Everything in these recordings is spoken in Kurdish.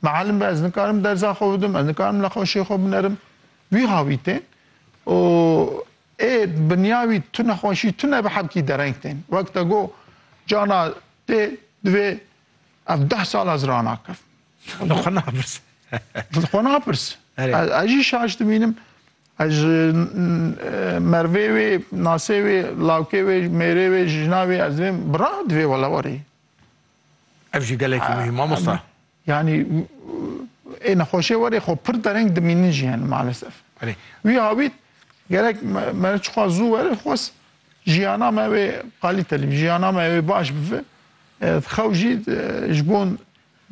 Miallim be ez nikarim derza xwe bidim, ez nikarim li xweşê xwe binerim. Wî hawî tên û ê binya wî tu nexweşî tune bi hevkî dereng tên. Wek te got cana tê divê ev deh sal ez ranakim. Li xwe napirs. Li xwe napirs. Ez jî şaş dimînim. Ez ji mervê wê, nasê wê, lawkê wê, mêrê wê, jina wê ez divêm bira divê wela warî. Ev jî gelekî muhîm mamosta. Yanî ê nexweşê werê xwe pir dereng dimînin jî hene malesef. Belê. Wî awît gerek me çiqas zû were xwest jiyana me wê qalîte lî jiyana me wê baş bive. Xew jî ji bo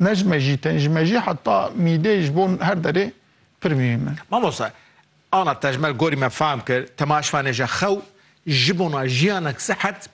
ne ji me jî tên ji me jî heta mîdê ji bo her derê pir muhîm e. Mamosta ana tejmer gorî me fam kir, tema ji van e je xew ji bona jiyanek sihet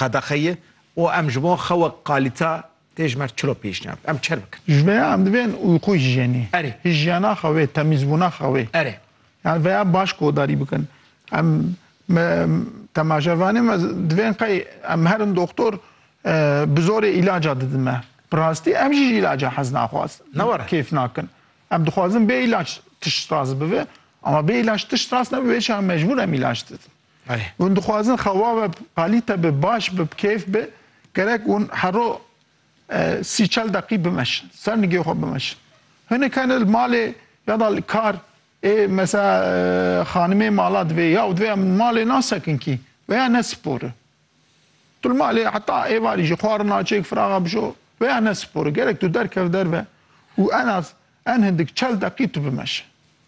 qedexeyê û em ji bo xewa kalîta tê ji mer çilo pêşniyar bikin, em çer bikin. Ji vêya em divên uyqû hijyenî, Erê. hijyena xewê, temîzbûna xewê, Erê. yan vêya baş kodarî bikin. Em me temaşevanê me divên qey em herin doxtor bi zorê îlaca didin me. Bi rastî em jî ji îlaca hez naxwaz Ne were. kêf nakin. Em dixwazin bê îlac tişt rast bibe. Ama bê îlac tişt rast nebibe, îşex mecbûr em îlac didin. Hûn dixwazin xewa we qalîte be, baş be, bi kêf be, gerek hûn hero sî çel deqî bimeşin, ser nigê xwe bimeşin. Hinek hene li malê ya da li kar ê mesela xanimê mala divê ya û divê em li malê nasekin kî veya ne spor e. Tu li malê heta êvarî jî xwarin naçêk firaxa bişo veya ne spor e. Gerek tu derkev derve û en az En hindik çel deqî tu bimeşe.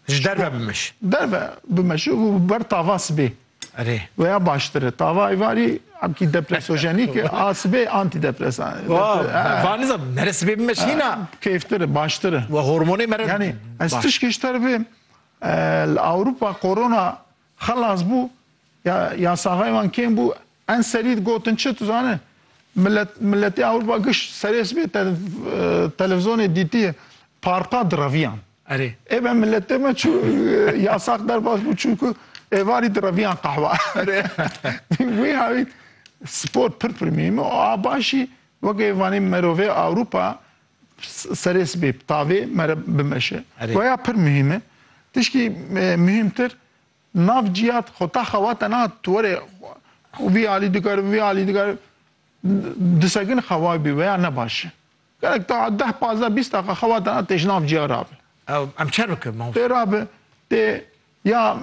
Ji derve bimeşe. Derve bimeşe û bi ber tava sibê. Erê. Weya baştir e. Tava êvarî emkî depresojenîk e. A sibê antîdepresan e. Van nizam mere sibê bimeşe hîna. Keyftir e, baştir e. We hormonê mere. Yanî ez tişkê ji te re bê li Ewropa korona Xelas bû, ya ya saxayê wan kêm bû, en serî digotin çi tu zane, milet miletê Ewropa giş serê sibê te televizonê dîtiye parka direviyan. Erê. Ê be miletê me çû ya sax derbas bû çûku êvarî direviyan qehwa. Erê. Wî hawî spor pir pir mîhîme û a başî weke vanê merovê Ewropa serê sibê bi tavê me re bimeşe. Erê. Goya pir muhîm e. Tişkî e, muhîmtir nav cîhat xwe ta xewa te na tu were vî alî dikar vî alî dikar disegin xewa bî veya ne baş e. Gerek ta deh pazdeh bîst deqa xewa te na têj nav cîya rabe. Ew em çer bikin Tê mamoste. rabe tê Ya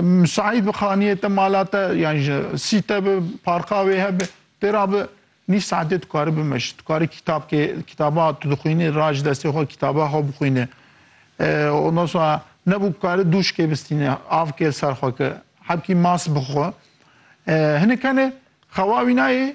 misaîd bi xaniyê te, mala te yan ji sî te bi, parka wê hebe, tê ra bi nîv saetê tu karî bimeşî. Tu karî kîtabkê kîtaba tu dixwînî ra ji destê xwe kîtaba xwe bixwînî. Ondan sonra nebû karî dûşkê bistînî, avkê li ser xwe ki hebkî mas bixwe. Hinek hene xewa wînayê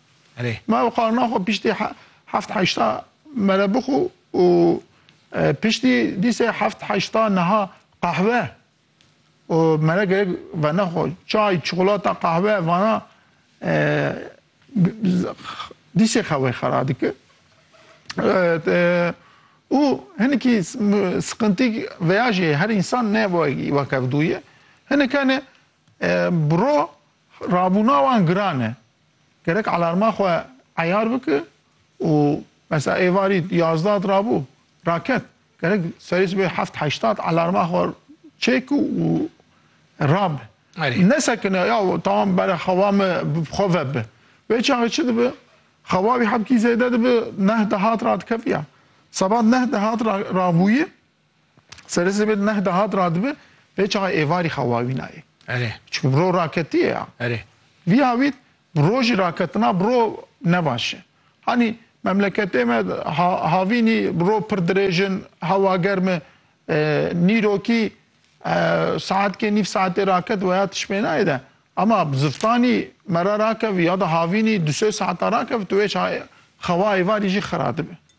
Erê. Ma ew qarna xwe piştî heft heşta me re bixwe û piştî dîsê heft heşta niha qehwe û me re gerek venexwe çay, çikolata, qehwe vana dîsê xewê xera dike. Û hinekî siqintî veya jî her însan ne weke ev dûye. Hinek hene bi ro rabûna wan giran e. Gerek alarma xwe eyar bike û mesela êvarî yazdat rabû raket gerek serê sibê heft heştat alarma xwe çêk û rabe. Nesekine ya tamam bere xewa me xwe vebe. Vê çaxê çi dibe? Xewa wî hebkî zêde dibe, neh dehat radikiviya. Seba neh dehat rabûye Serê zêbê di neh de hat radibe, pê çaxê êvarî xewa wî nayê. Erê. Çikû bi ro raketîye ya. Erê. Vî havît bi rojî raketina bi ro ne baş e. Hanî memleketê me ha havînî bi ro pir dirêj in, hewa germ e. Nîrokî saetkê nîv saetê raket weya tişmênayê de. Ema bi ziftanî me re rakevî ya da havînî du sê saeta rakevite wê çaxê xewa êvarî jî xira dibe.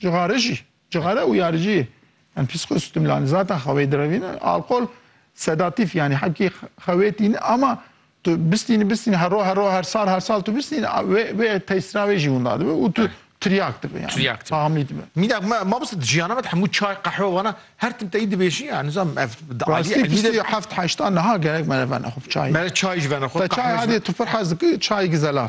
Cixare jî, cixare û yariciyê yan psîkostimulantî zaten xewê direvîne. Alkol sedatîf yanî hewkî xewê tîne ama tu bistînî bistînî her roj her roj her sal her sal tu bistînî wê wê tesîra wê jî winda dibe û tu tiryak dibe yanî. Tiryak dibe. Tahamlî dibe. Mînak me ma bist di jiyana me de hemû çay, qehwe wana her tim teyî dibêjî ya nizam ev di aliyê Rastî elmî de pîstî heft heşta niha gerek me re vene xwe bi çayê. Me re çayî ji vene xwe, Te çay qehwe ji hadê vene. tu pir hez dikî çayê gizelal.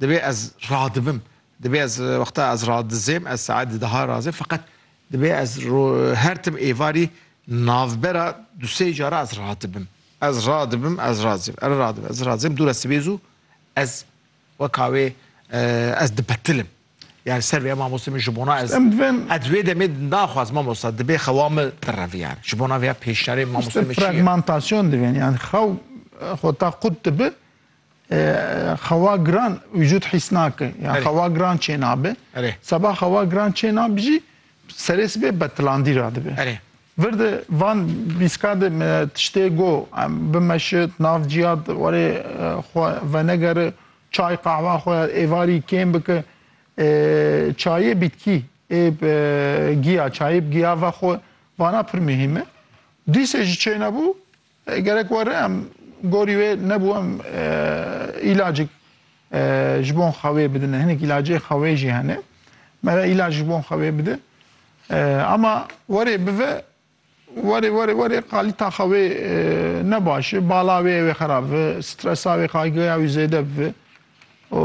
Divê ez radibim. Divê ez wexta ez radizêm ez saet di daha razê feqet divê ez her tim êvarî navbera du sey cara ez radibim. Ez radibim ez razêm ez radibim ez razêm dû re sibê zû ez weka wê ez dibetilim. Yani ser vê mamoste min ji bona ez ez wê demê naxwaz mamosta dibê xewa min birev yani ji bona vêya pêşniyarê mamoste min çi ye. Fragmentasyon divê yani xew xwe ta qut dibi Xewa giran vücut hîs nake. Ya xewa giran çênabe. Seba xewa giran çênab jî serê sibê betilandî ra dibe. Vir de van bîska de me tiştê go em bimeşit nav ciya warê xwe venegere çay qahwa xwe ya êvarî kêm bike çayê bîtkî ê giya çayê giya ve xwe vana pir muhîm e. Dîsê jî çênebû Gerek were em gorî wê nebû em îlacik ji bo xewê bidin. Hinek îlacê xewê jî hene. Me re îlac ji bo xewê bide. Ama were bive were were were qalîta xewê ne baş e. Bala wê wê xerab bi, stresa wê kaygıya wî zêde bibe û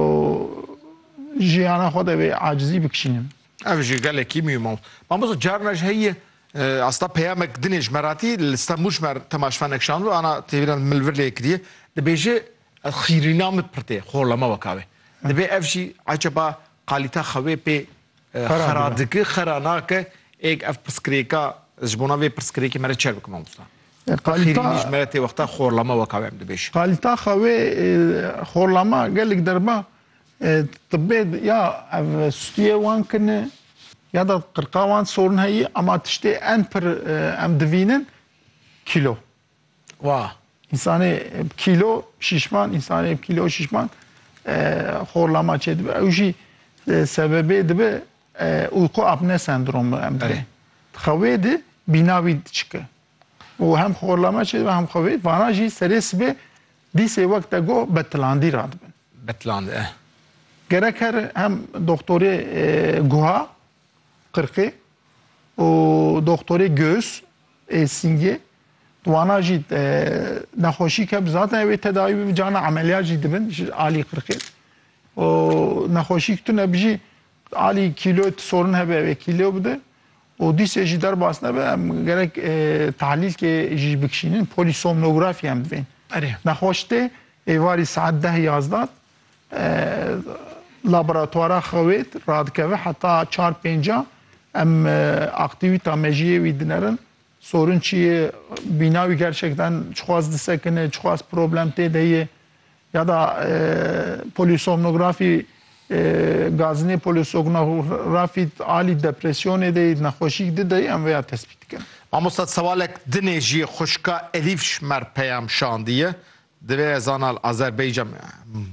jiyana xwe de wê acizî bikişînin. Ev jî gelekî mî mal. Mamosta carina ji heyî asta peyamek dinê ji me ratî li Stenbûl ji me temaşvanek şandbû ana têbîna min li vir lê kiriye. Dibêje ez xîrîna min pir tê xolema weka wê. Dibê ev jî ecaba qalîta xewê pê xera dike, xera nake êk ev pirsgirêka ez ji bona vê pirsgirêkê me re çer bikim mamosta. Qalîta ji me re tê wexta xolema weka wê em dibêje. Qalîta xewê xolema gelek derba Tibê ya ev stûyê wan kin e ya da qirqa wan sorun heyî ema tiştê en pir em divînin kîlo. Wa însanê bi kîlo şîşman, însanê bi kîlo şîşman xorlama çêdibe. Ew jî sebebê dibe uyku apne sendromu em dibê. Xewê di bîna wî diçike. Û hem xorlama çêdibe hem xewê. Vana jî serê sibê Dîsê wek te got betlandî radibin. Betland e. Gerek her hem doktorê guha, qirqê û doktorê gös ê sîngê wana jî nexweşî ke zaten ew ê tedawî bibin cana emeliyat jî dibin ji alî qirqê û nexweşî tune bijî alî kîloyê ti sorin hebe ew ê kîlo bide Û dîsê jî derbas nebe em gerek tahlîlkê jî bikişînin, polîsomnografyê em divên. Erê. Nexweş tê, êvarî saet deh yazda laboratwara xewêd radikeve heta çar pênca em aktîwîta mejiyê wî dinerin, sorun çi ye, bîna wî gerçekten çiqas disekine, çiqas problem tê de ye, Ya da polîsomnografî Gaznê polîsognorafî alî depresyonê de yî, nexweşîk di de yî em vê ya tespît dikin. Mamosta sewalek dinê jî xwişka Elîf Şmer peyam şandiye. Divê ez zana li Azerbaycan me.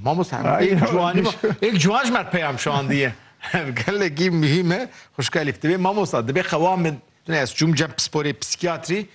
Mamosta em ê ciwanî ma ê ciwan ji me re peyam şandiye. Ev gelekî muhîm e. Xwişka Elîf divê mamosta dibê qewa min tunê ez çûm cem pisporê psîkiyatrî.